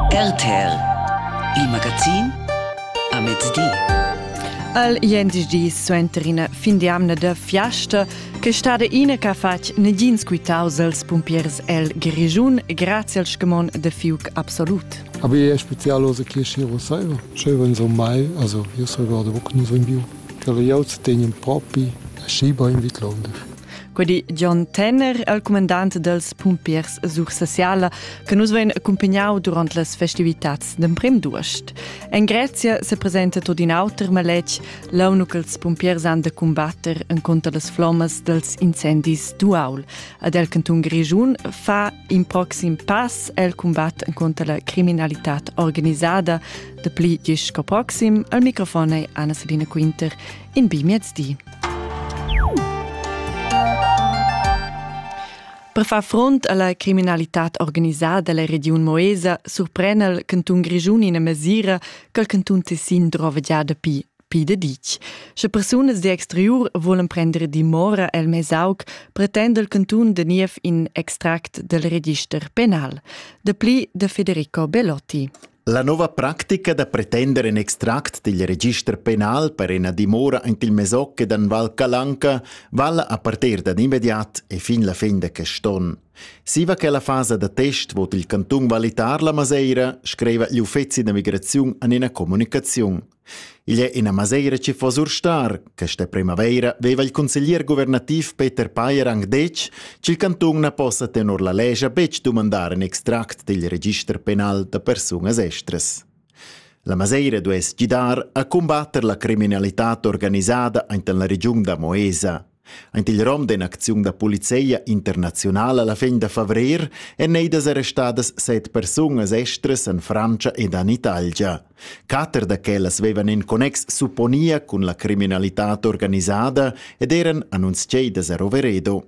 RTL, il magazin a mezdi. Al jendisch suenter ina fin di amna da fiasta che stada ina che ha fatg negins quitaus als pumpiers el Grischun grazie al scamon de fiuc absolut. Aber je spezialose che schiro saiva. Schöven so mai, also io so guardo wo nu so in bio. Tele jauts tenien propi a schiba in Vitlonde. Quei di John Tenner, il comandant dels pumpiers Sursasiala, che nus vein accumpagnau durant las festivitats d'emprem d'uost. En Grezia se presenta tot in auter maletg, l'onu che els pumpiers han da combatter en contra las flommas dels incendis d'Uaul. Ad el cantun Grigiun fa in proxim pass el combatt en contra la criminalità organisada. De pli disch co proxim, al microfon è Anna Selina Quinter in bi miezdi. Per far front alla criminalità organisada dalla Region Moesa surprena il cantun Grischun ina mesira che il cantun Tessin drova già dapi pi de ditg. Sche persunas de exterior volen prendere dimora el Mesauc, pretende il cantun de niev in extract del register penal. De pli de Federico Belotti. La nova practica da pretender in extract digl register penal per ina dimora ant il Mesocche d'an Val Calanca vala a parter dad immediat e fin la fin de quest'on. Siva che la fasa da test vot il cantun valitar la Maseira, screiva gli uffeci da migraziun an ina comunicaziun. Igl è ina maseira che fa surstar. Questa primavaira veva il consiglier guvernativ Peter Payer anc detg ch'il cantun na possa tenor la lescha betg dumandar in extract dil register penal da persunas estras. La maseira duess gidar a cumbatter la criminalitad organisada enten la regiun da Moesa. Aint il rom d'in'acziun da polizia internaziunala la fin da favrer èn neidas arrestadas set persunas estras en Frantscha ed en Italia. Quatter da quellas vevan in connex supponia cun la criminalitad organisada ed eran annunziadas a Roveredo.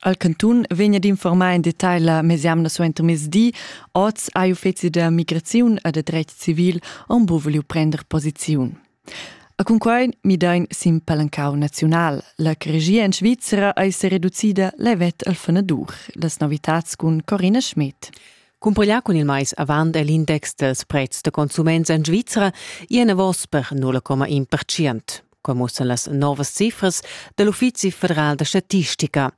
Al cantun vegna d'informar en detagl la mesemna suenter mezdi. Oz ha uffeci da migraziun e da dretg civil en buvuliu prender posiziun. A cunquai midain sin palancau naziunal. La regia en Svizra ei sereducida levet al fanadur. Las novitads cun Corina Schmidt. Cumpiglià cun il mais avant è l'index dels prezs da consuments en Svizra i enavos per 0,1%. Come mussen las novas cifras dell'Uffizi federal da statistica.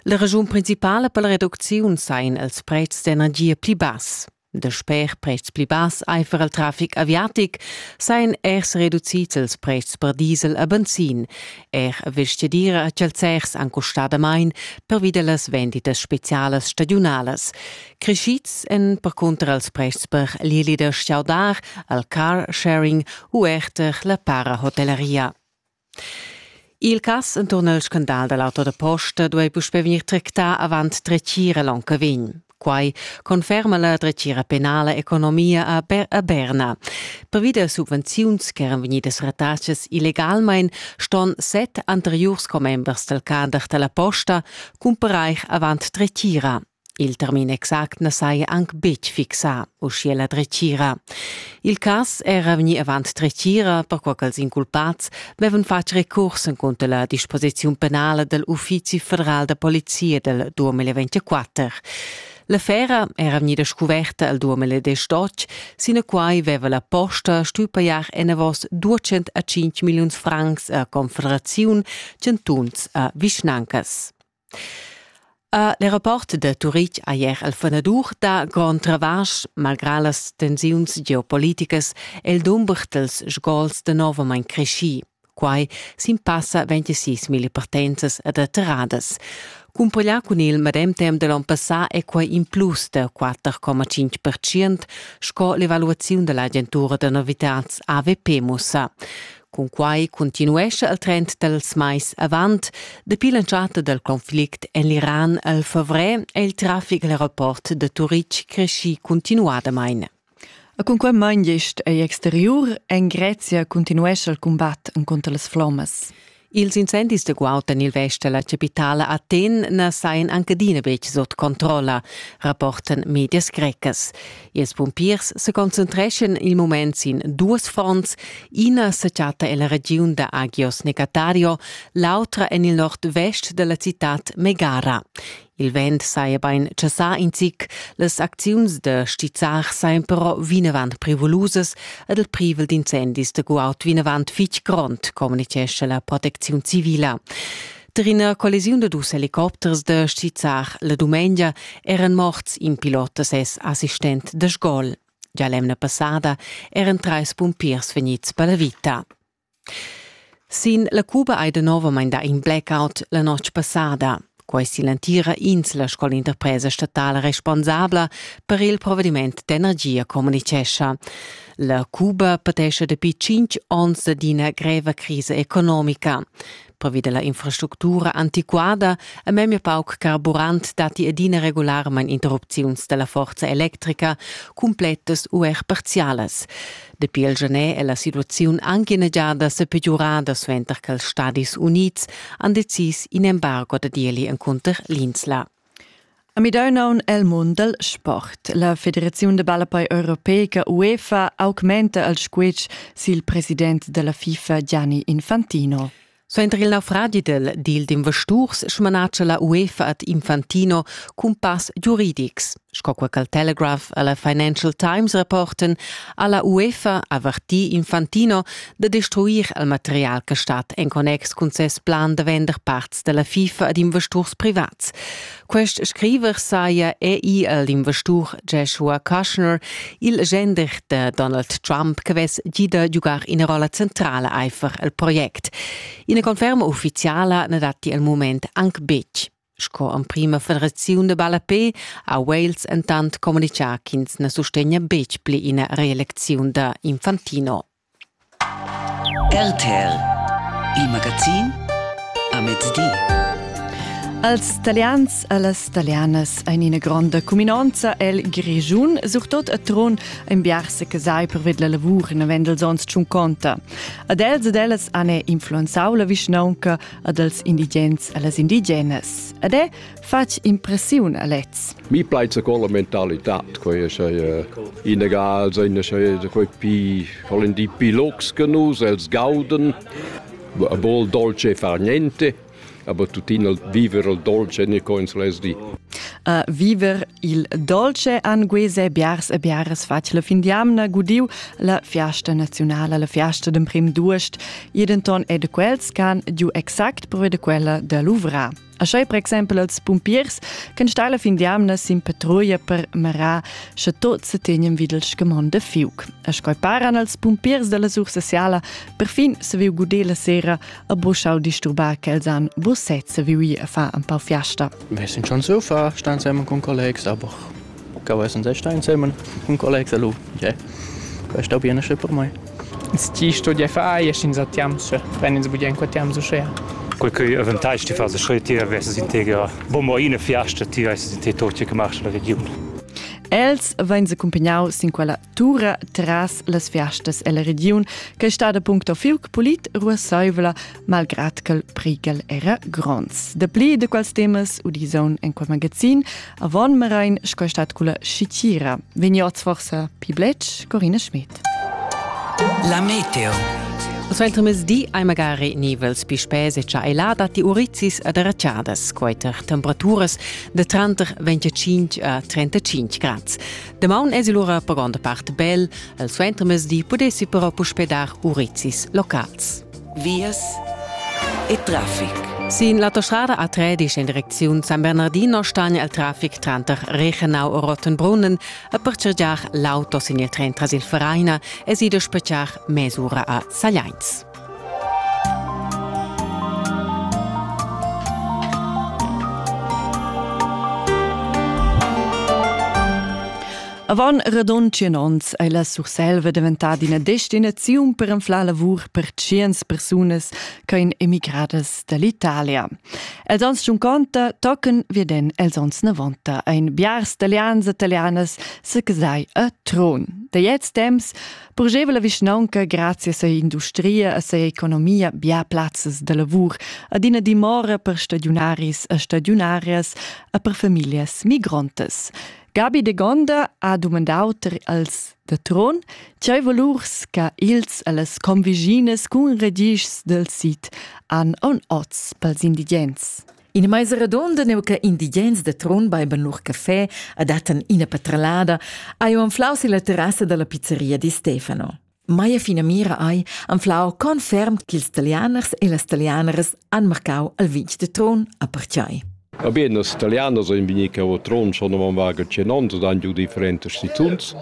La ragiun principale per la reduzione sein els prezs d'energia pli bass. Dasper pretschs pli bass aifer il trafic aviatic sajan er reducids ils pretschs per diesel e benzin. Er vestgadira e chalzers han custà damain pervi da las venditas spezialas stagiunalas. Creschids èn percunter els pretschs per l'eli da stgaudar, il car sharing u er per la para-hotelleria. Il cass enturn il scandal dal auto da posta duai puspè vegnir tractà avant dretgira l'onn che vegn. Quai conferma la dretgira penala economia a, Ber a Berna. Pervi da subvenziuns ch'eran vegnidas ratadas illegalmain ston set anteriurs commembers dal cader da la posta cumparair avant dretgira. Il termin exact na saja anc betg fixà, uschia la dretgira. Il cas era vegnì avant dretgira, perquai ch'als inculpads vevan fatg recurs encunter la disposiziun penala dal Uffizi federal da polizia dal 2024. L'affera era vegnida scuverta al 2018, sinaquai veva la posta stuì pajar enavos 205 milliuns francs a Confederaziun, chantuns a vischnancas. L'aeroport da Turitg ha ier el fanadur dà grond travasch, malgrà las tensiuns geopoliticas è il dumber dals sgols danovamain creschì. Quai sin passa 26.000 partenzas ed atterradas. Cumpareglià cun il medem temp da l'onn passà è quai in plus da 4,5% sco l'evaluaziun da l'agentura da novitads AVP mussa. Cunquai continuescha il trend dals mais avant. Dapi l'entschatta dal conflict en l'Iran al favrer è il traffic al aeroport da Turitg creschì cuntinuadamain. E cun quai main gest ei exteriur, en Grezia continuescha il cumbat encunter las flommas. Ils incendis da guaud en il vest da la capitala Aten na sajan anche adina betg sut controlla, rapportan medias grecas. Ils pumpiers seconcentreschan il mument sin duas fronts, ina sa chatta ella regiun da Agios Negatario, l'autra en il nord-vest della citad Megara. Il vent saja bein chassà in zic, las acziuns da stizzar sajan però vinavant privulusas ed il privel d'incendis da guaud vinavant fitg grond, communichescha la protecziun civila. Tar ina collisiun da dus helicopters da stizzar la dumengia eran morts in pilot da ses assistent da sgol. Gia l'emna passada eran trais pumpiers vegnids per la vita. Sin la Cuba hai danovamain dà in blackout la notg passada. Quai è l'entira insla sco l'interpresa statala responsabla per il provvediment d'energia communicescha. La Cuba patescha dapi tschintg onns d'ina greva crisa economica. pervi della infrastructura antiquada e memia pauc carburant datti adina regularmain interrupziuns della forza electrica, cumplettas u er parzialas. Dapi il gener è la situaziun anche inneggiada sepegiurada suenter che ils Stadis Unids han decis in embargo da ieli encunter l'Insla. A midau aun el mund dal sport. La Federaziun da ballapei europeica UEFA augmenta al squitsch sil president dalla FIFA Gianni Infantino. Suenter il naufragi del deal d'investurs smanatscha la UEFA ad Infantino cumpass giuridics. Sco quel al Telegraph a la Financial Times reporten, ha la UEFA avertì Infantino da destruir il material che stat en connex cun ses plan da vender parts della FIFA ad investors privats. Quest scriver saja ei el investur Joshua Kushner, il gender de Donald Trump che vess gida giugar ina rolla centrala einfach el project. Ina conferma ufficiala ne datti al moment anche betg. Sco emprima federaziun de ballapé ha Wales entant communicà ch'ins na sustegna betg pli ina reelecziun da Infantino. RTL, il magazin a mezdi. Als Talians e las Talianas ein ina gronda cuminonza el Grischun, surtot a Trun, in biars che sai per ved la lavur navendels ons tschunconta. Ad els ed ellas han influenzau la vischnaunca ad els indigens e las indigenas. Ed è fatg impressiun a lez. Mi plaisa con la mentalità, quei è sei inegal, sein sei quei pi vollen di pi locs che nus, els gauden, a bol dolce far niente, aber tuttina viver il dolce ne coins les di. Uh, viver il dolce an guese biars e biares fatg la fin d'jamna gudiu la fiasta nazionala, la fiasta d'emprim d'uost, jedenton è de quels can giu exact pro de quella de Luvra. Aschai per exempel als pumpiers ch'en stai la fin d'jamna sin patrulla per marar sche tots se tenien videl scamond de fiuc. A scoi paran als pumpiers della Sursasiala perfin se viu gudé la sera a boschau disturbar che els han bosset se viu ir a fa un pau fiasta. Wir sind schon so far, stan zusammen con collegs, aber ch'eu es ün stà insemen cun collegs e lu già quai sta bine schi per mai. Ti studiai far ies ins a Tiamsche, wenn ins budien qua Tiamsche schea. Quel che eventai ti fas schrei ti vesses in tegra bomber ina fiasta ti vesses in te tot che marcha la region. Els vein secumpigniau sin quella tura tras las fiastas ella regiun che stada puncto fiuc polit ruassaivla malgrad ch'el prighel era gronds. Dapli de quals temas udison en quel magazin avon Merain sco stat culla Scitira. Vegnots forsa pi blec Corina Schmidt. La meteo. Os veltre di ai magari nivels pi spese cha ai lada ti urizis ad erracciadas, quaiter temperaturas de tranter 25 a 35 grads. Damaun es il ura per gronda part bel, el suentermezdi pudessi però puspè dar urizis locals. Vias e traffic. Sin l'autostrada A13 in direcziun San Bernardino stagna il traffic tranter Reichenau e Rottenbrunnen e per cergiar l'auto sin il tren tras il Vereina es ido spetgar mesura a Sagliains. Avant radund tschien onns ei la Surselva daventada ina destinaziun per anflar lavur per tschiens persunas che ein emigradas dall'Italia. Els ans giunconta tochen veden els ons novanta ein biars talians e italianas secasai a Tron. Da jetzt temps Purgeva la vischnaunca grazias a industria e sa economia bia plazzas da lavur, adina dimora per stadiunaris e stadiunarias e per famiglias migrontas. Gabi de Gonda ha dumandau als da Tron, tgei valurs che ils e las conviginas cun regischs del sit han on oz pels indigens. In meisa redonda neu che indigens da Trun beiben lur caffè adattan ina patralada, ha jeu anflau silla terrassa dalla pizzeria di Stefano. Meia finamira ei anflau conferm ch'ils talianers e las talianeras han marcau al vitg de Trun a pertgei. Va bene, nos italianos ein vegni che o Trun schon am vaga cenons dan giu differentes situns.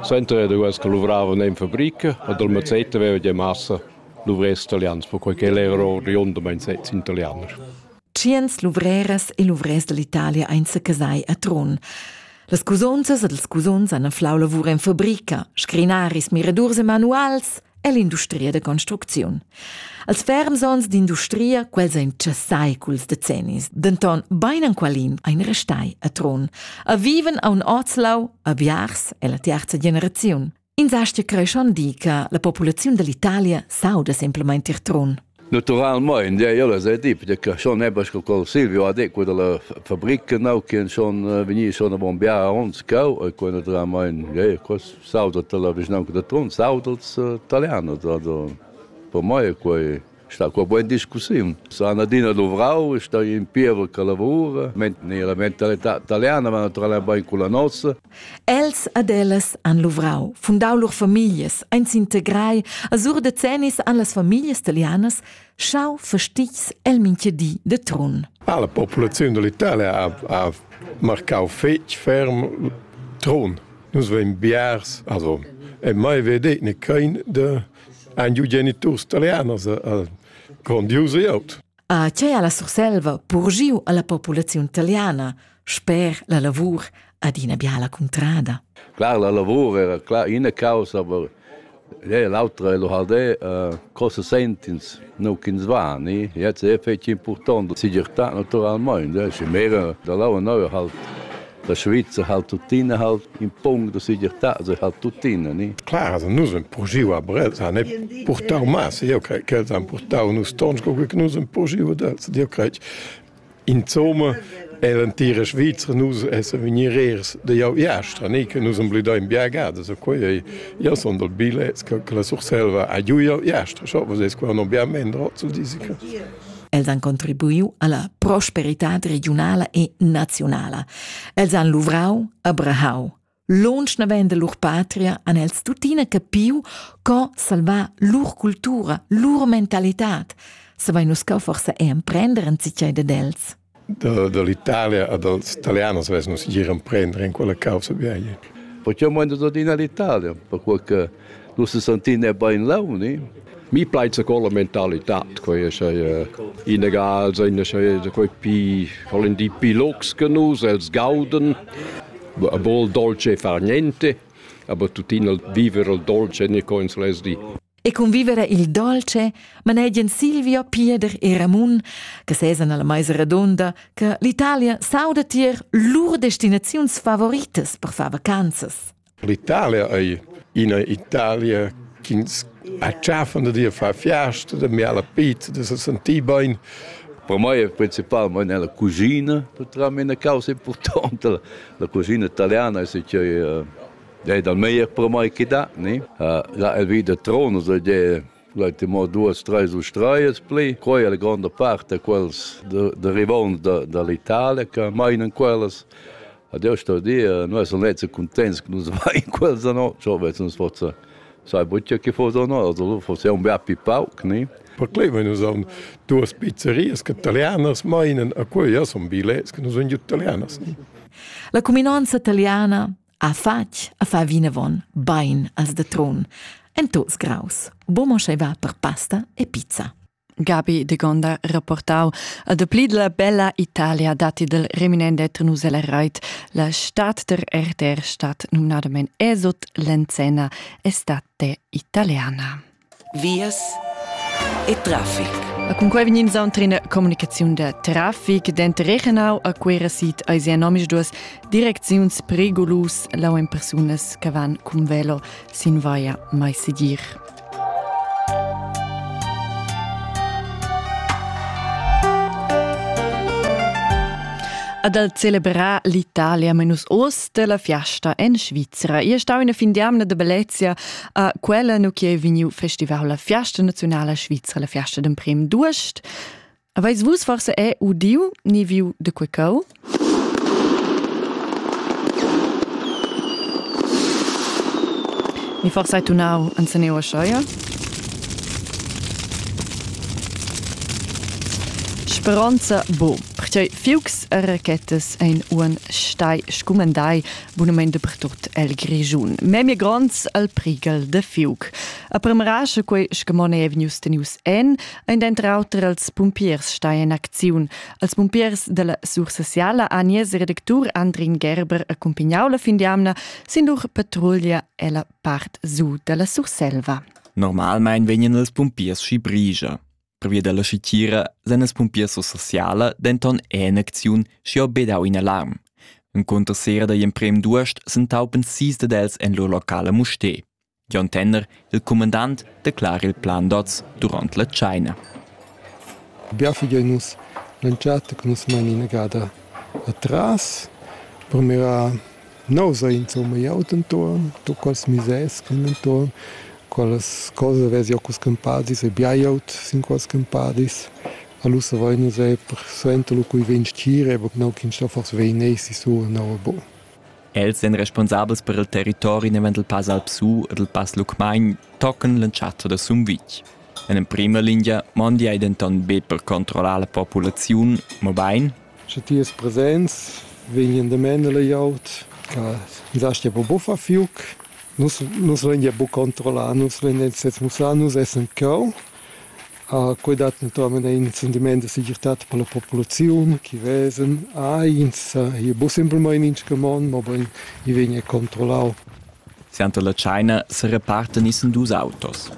Senta era duas che luvravan in fabrica, ad al mazzetta aveva già massa luvrers italians, perquai che el era oriundamain sez italianer. Tschients luvreras e luvrers dall'Italia ein secasai a Trun. Las cusonzas ed ils cusons han anflau lavur en fabrica, scrinaris, miradurs e manuals ell'industria da construcziun. Als ferms onns d'industria, quels ein tschessai culs decennis, denton bein enqualin ein restai a Trun, a viven a un Ozlau, a Biars, ella tiarza generaziun. Insastia creschon di che la populaziun dell'Italia sauda semplament ir trun. Naturalmein, ja, ella sei tip, che schon ebbe sco col Silvio ha detto della fabbrica now che schon veni schon a bombiare uns cau e quando dramein ja, quas sauda la vignanca de Trun, sauda els italiano, da per mai quei sta qua buona discussiun. S'han adina luvrau e sta in pievel che lavura, ne la mentalità italiana va naturalmente bain con la nostra. Els ad ellas han luvrau, fundau lur famiglias, ein s'integrai, a sur decennis han las famiglias italianas schau fastigs el minchedi de Trun. Ah, la popolazione dell'Italia ha, ha marcau fetg ferm Trun. Nus vein biars, also, e mai vedet ne kein de ein giu geniturs italianos a, a grondius e aut. A tgei ha la Surselva purgiu alla populaziun italiana sper la lavur ad ina biala cuntrada? Clar, la lavur era clar ina causa, aber l'autra è l'Uhaldè, uh, cosa sentins, nu ch'ins va, ni? Jetzt è fetg important, la segirtà naturalmente, è mera da là neu halt. La Svizra halt tuttina halt in pung da segirtà, se halt tuttina, ni? Clar, also nus haben purgiu a Brels, han purtau mas, io crei che els han purtau nus tons, comunque che nus haben purgiu dels, io crei Insomma, e l'antira Svizra nus essen venireers de jau jastra, ni che nus am blidai in biagada, so quei ei, io son dal bilets che la Surselva ha giu jau jastra, so was es qua non biam mendro zu disi. Els han contribuiu alla prosperitad regiunala e nazionala. Els han luvrau, abrahau. Lunsch naven de lur patria han els tuttina capiu co salvar lur cultura, lur mentalitad. Savein nus co forsa emprender en cicei ded els. da, da l'Italia e dals italians vess nus gir emprender en quella causa vieia. Perché mo tot in all'Italia, perché che nus sentin è bain launi. Mi plaisa con la mentalità, quei sei inegal, sei quei pi, volen di pi lux che nus, els gauden, a bol dolce e far niente, aber tuttina viver il dolce ne coins les di. e convivere il dolce manegian Silvio, Pieder e Ramun, che sesan alla meisa redonda, che l'Italia sauda tier lur destinaziuns favoritas per far vacanzas. L'Italia è una Italia ch'ins acciaffan da dir far fiasta, da miar la pizza, da se sentir bene. Per me è principalmente nella cucina, per me è una causa importante. La, la cucina italiana è che Dei dal meglier per mai che da, ne? Ha là el vi da tronos, e de Leute mo duas, treis u streias pli. Quei è la gronda parte quels derivons da, dall'Italia che meinen quellas. Adesso sto dire, noi sono lezzi contenti che non vai in quels da no, ciò invece non forse sai buccia che fosse o no, also forse è un bel pipauc, ne? Perché noi sono due pizzerie che italianas meinen, e quei ja sono bilets che non sono italianas. Ne? La cuminanza italiana Ha fatg a far vinavon bein als da Trun, en tuts graus, bumo va per pasta e pizza. Gabi de Gonda rapportau a dapli la bella Italia dati del reminende Trunusela Reit, la stat der RTR stat numnadamen Esot Lenzena e state italiana. vias e traffic. A cun quei vegnin sauntrina comunicaziun da traffic denter Rechenau a Cuera sit eis ja nomisch duas direcziuns pregolus lau en persunas che van cun velo sin vaia mai segir. Ad al celebrar l'Italia menus oz della fiasta en Svizzera. Io stau in fin di amna de bellezia A quella nu chi è vegniu festival la Fiasta Nazionala Svizra, la Fiasta d'emprem d'uost. Aveis vus forse è udiu ni viu de quecau? Mi forse hai tunau an Saneo Scheuer? Speranza bo, perché fiugs e rachetas ein un stai scumendai Bunamain dapertut el Grischun. Memia gronds al prighel da fiug. A premera sche quei scamon ei vegnius tenius en, ein denter auter els pumpiers stai en acziun. Als pumpiers dalla Sursassiala ha nies redactur Andrin Gerber accumpagnau la fin d'jamna sin lur patruglia ella part su dalla Surselva. Normalmein vegnan els pumpiers schi brigia. Pervia dalla schitira san las pumpiers sociala denton en acziun schiu bedau in alarm. En conter sera da emprem duest s'entaupen sis dad els en lur locale Mustè. John Tenner, il commandant, declara il plan d'oz durant la China. Bia figliein nus l'entschatta che nus mein inagada atras. Purmira No s'ha insomma eau dentuorn do quels misers che dentuorn quellas cose vez eau culs cumpadis e biajaut sin quels cumpadis. Alura vain nus eir suenter lu cui vegn stgir eau no ch'ins sto fors vegner sisur no e bo. Els èn responsabels per il territori navant dal Pass Alp Su e dal Pass Lucmagn tocan l'entschatta da Sumvitg. En emprima lingia mondi ei denton be per controllar la populaziun, mobein Sche ti es presents, vegnan damain a la glieud che nus astgia po buffar fiuc. Nus nus lain gia buc controllar, nus lain sez mussar, nus essan cheu. Quei dat naturalmein in sentiment da segirtad per la populaziun che vesan eins ei buc simplmein in scamond, mobein ei vegn er controllau. Suenter la tscheina serepartan issen dus autos.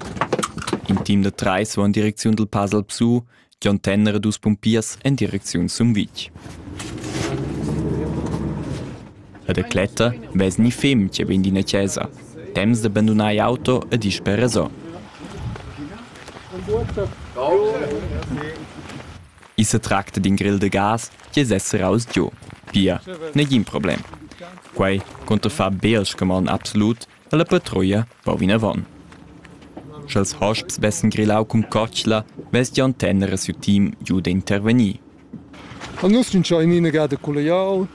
In team da treis va en direcziun dal Pasal Psu Gion Tenner e dus pumpiers en direcziun Sumvitg. La decletta vess ni fem che vegn d'ina chesa, temps da bandunar auto e disper resò. I se tracta d'in grill de gas che sessera aus giu. Pia, negin problem. Quei conta far beal scamon absolut dalla patruia va vinavon. Sch'els hosps vessen grillau cun cotschla, vess Gian Tenner e siu team giu d'intervegnir. A nus gnanca in inagada colliaut,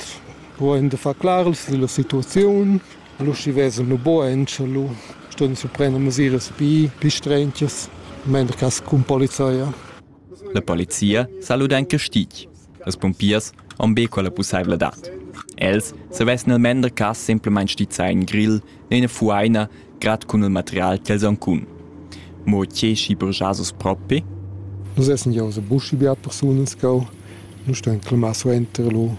puein da far claras dalla situaziun. Allo schi vesan lu bugen, sche lu ston su prender mesiras pi, pi strentias, mender cas cun polizia. La polizia sa luda en castig. Las pumpiers han be quella pussaivladad. Els savessan il mender cas semplamain stizzar in grill e ina fuaina grad cun il material ch'els han cun. Mo tge schi burgiasos propi? Nus essen ja usse buschi beat persunas cau. Nus stan clamar suenter lo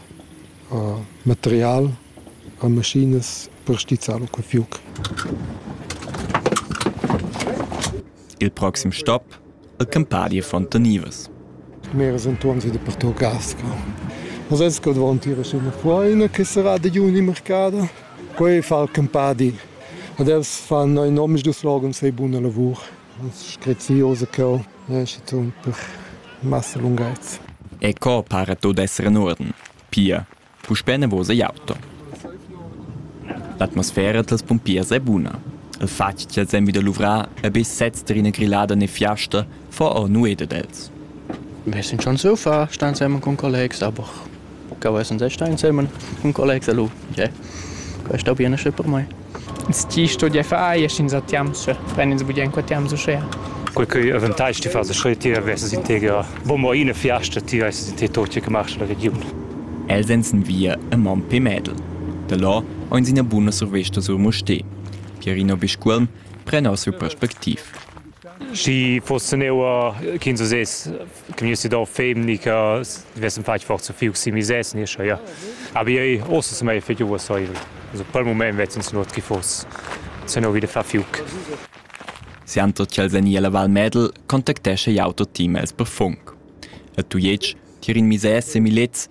uh, material a maschinas per stizzar lo quei fiuc. il proxim stop el Campadi e Fontanivas. Meras entuorns ed pertò Casca. Nus esco davanti a ina foina che sarà da juni marcada. Quei fa il Campadi. Ad els fan ein omisdus slogan sei buna lavur. Es screziosa cheu, esce tun per massa lunghezza. E co pare tot esser in orden? Pia, Puspè enavos igl auto. L'atmosfera dals pumpiers è buna. Il fatg ch'els èn vi da luvrar e be sezs tar ina grillada ne fiasta fa or nueda d'els. Wir sind schon so far, stan zusammen con collegs, aber che vessan se stan zusammen con collegs a lu. Yeah. Questo bien esce per mai. Tgi studia far aia sch'ins ha tiamsa? Fran ins bugen qua tiams uschea. Quel cheu avantais ti far scheu, ti vesses in teger. Bon, mo ina fiasta, ti vesses in te tot che marcha la regiun. Els ein sin via e mon pe Medel. Da là ein ina buna survesta sur Mustér. Pierino Biscuolm pren or siu perspectiv. Schi foss neuer ch'ins uss Gniu si do femni che vessem fatg forza fiug si misès ni scha ja. Aber io ossa se mai fetg uossaivel. Also pel mument vezzin sun ot chi foss se no vide fa fiug. Siando ch'el sen illa Val Medel contactescha jau tot team els per funk. A Tujetsch tier in misès semilets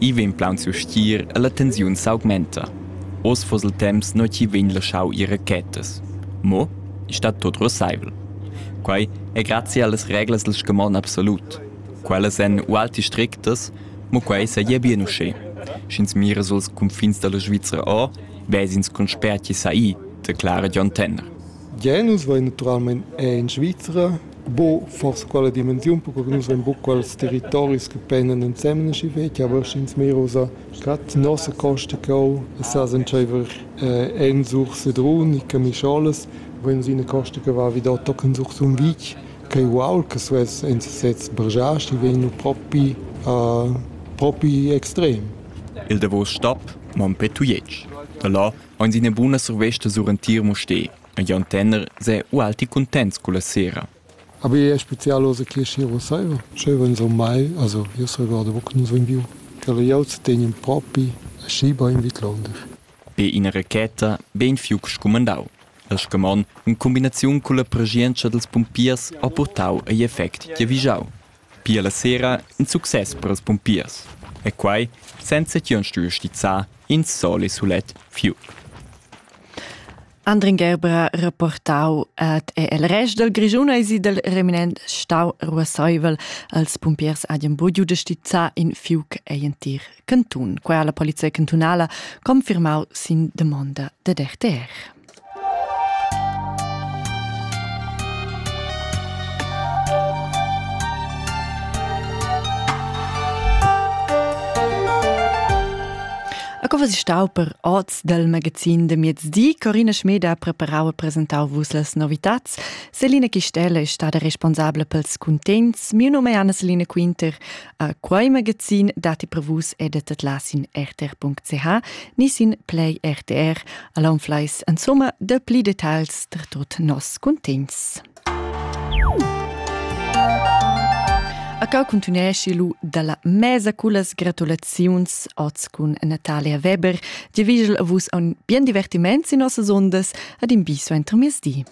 I vegn plaunsiu stgir e la tensiun s'augmenta. Oz fuss il temps nua ch'i vegn laschau ir rachetas. Mo ei stat tut russeivel. Quei è grazia allas reglas dil scamon absolut. Quellas èn ualti strictas, mo quei seigi bien uschè. Sch'ins mira suls cunfins dalla Svizra o, ves'ins con spert chi sa i, declara Dion Tenner. Gia nus vein naturalmein era en Svizra buca forsa quella dimensiun, perquei che nus vein buca quels territoris che pendan ensemen aschi fetg, aber sch'ins mir ussa gerade nossa Costa Cau e sa s'entscheiver eh, Ensur Sedrun e Camischolas, vein nus ina costa che va vi da tochen sur Sumvitg, ch'ei uaul che suess en sesez bergiar, die vegn propi, uh, propi extrem. Il davos stap Mompé Tujetsch. Da là Aunz üna buna survesta sur entir Mustér. E Jon Tenner s'è ualti cuntents culla sera. Aber è spezial oz che Schiro saiva? Sch'eu vegn sur mai, also io s'regorda mo che nus vain viu. Quel jau zu tegn propi aschi bain vidlonder. Be ina racheta bein fiuc scumandau. El scamon, in cumbinaziun culla preschientscha dels pumpiers, ha purtau egl effect giavischau. Pia la sera in success per ils pumpiers, e quai senza ch'jeu stuiu stizzar in sol e sulet fiug. Andrin Gerber rapportau ad el rest dal Grischun eisi dal reminent stau ruasseivel als pumpiers adien bugiu de stizzar in fiug ei entir cantun. Quella la polizia cantunala confirmau sin demonda dad RTR. was ist stau per Orts del Magazin de Miezdì? Corina Schmeda ha preparau e presentau vus las novitats. Selina Chistella è stata responsabile pels contents. Mio nome è Anna-Selina Quinter. A quai magazin datti prevus editet las in rtr.ch ni sin Play RTR al anfleis insomma da pli detagls per tot nos cuntents. A cau continuesci lu dalla mesa cullas gratulaziuns oz cun Natalia Weber, di vigel a vus un bien divertiment in nossas ondas ad in biso entro miezdi.